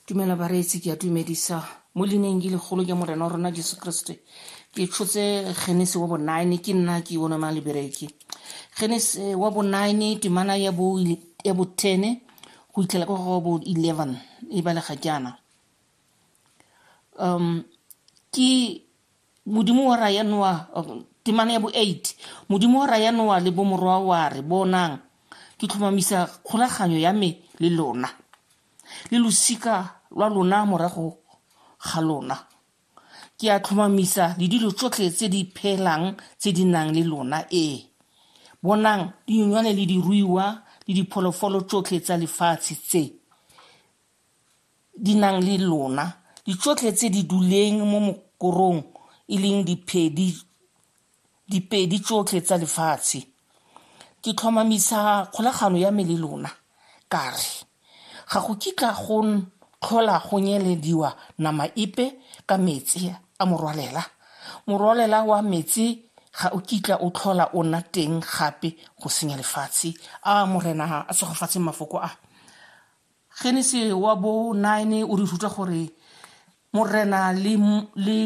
dumela bareetsi ke a tumedisa mo lineng ke legolo ke morena wa rona jesu kriste ke tshotse genese wa bonine ke nna ke one mang lebereke genese wa bonine temana ya bo ya bo tene go itlhela ka go bo eleven e balega jaana um ke modimo wa raya noa um, temana ya bo eight modimo wa raya noa le bomorwa wa re bonang ke tlhomamisa kgolaganyo ya me le lona le losika lwa lona morago ga lona ke a tlhomamisa le dilo tsotlhe tse di phelang tse di nang le lona ee bonang dinyonywane le diruiwa le dipholofolo tsotlhe tsa lefatshe tse di nang le lona di tsotlhe tse di duleng mo mokorong e leng diphedi dipedi tsotlhe tsa lefatshe ke tlhomamisa kgolagano ya me le lona ka re ga go kitla go tlhola go nyelediwa nama epe ka metsi a morwalela morwalela wa metsi ga o kitla o tlhola o nna teng gape go senya lefatshe a morena a tshegofatshe mafoko a Genese wa bo 9 o re ruta gore morena le le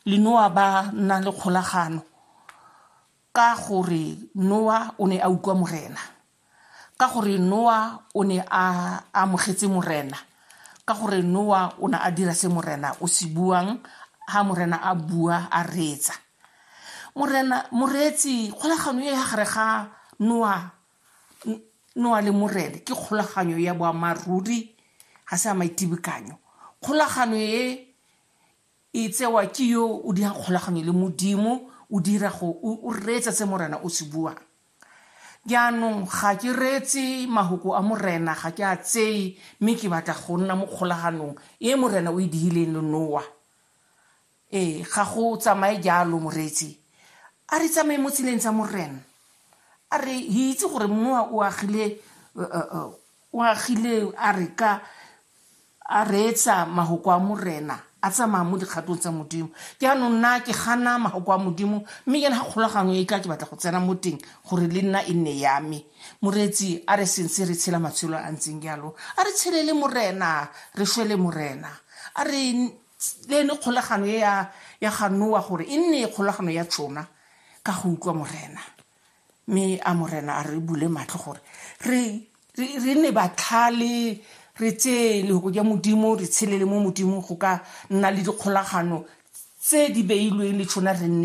le Noa ba na le kgolagano ka gore Noa o ne a utlwa morena ka gore Noa o ne a amogetse morena ka gore Noa o ne a dira se morena o se buang ha morena a bua a reetsa morena moreetsi kgolagano e ya gare ga Noa noa le morele ke kgolaganyo ya boammaaruri ga se ya maitibikanyo kgolagano e e tsewa ke yo o dirang kgolaganyo le modimo o dira go o reetsa se morena o se buang jaanong ga ke reetse mahoko a morena ga ke a tseye mme ke batla go nna mo kgolaganong e morena o e digileng le noa Ee, ga go tsamaye jalo, moreetsi. A re tsamaye mo tseleng tsa Moren. A re itse gore mmoa o agile, o agile a re ka a reetsa mahoko a Morena, a tsamaya mo dikgatong tsa Modimo. Jaanong nna ke gana mahoko a Modimo, mme jaana ga kgolagano e tla ke batla go tsena mo teng gore le nna e nne ya me. Moreetsi a re sentse re tshela matshelo a ntseng jalo, a re tshelele Morena, re shwele Morena. A re le ne kgolagano e ya ya ga Noa gore e nne kgolagano ya tsona ka go utlwa morena mme a morena a re bule matlho gore re re ne batlhale re tseye lehoko ja modimo re tshelele mo modimo go ka nna le dikgolagano tse di beilweng le tsona re nne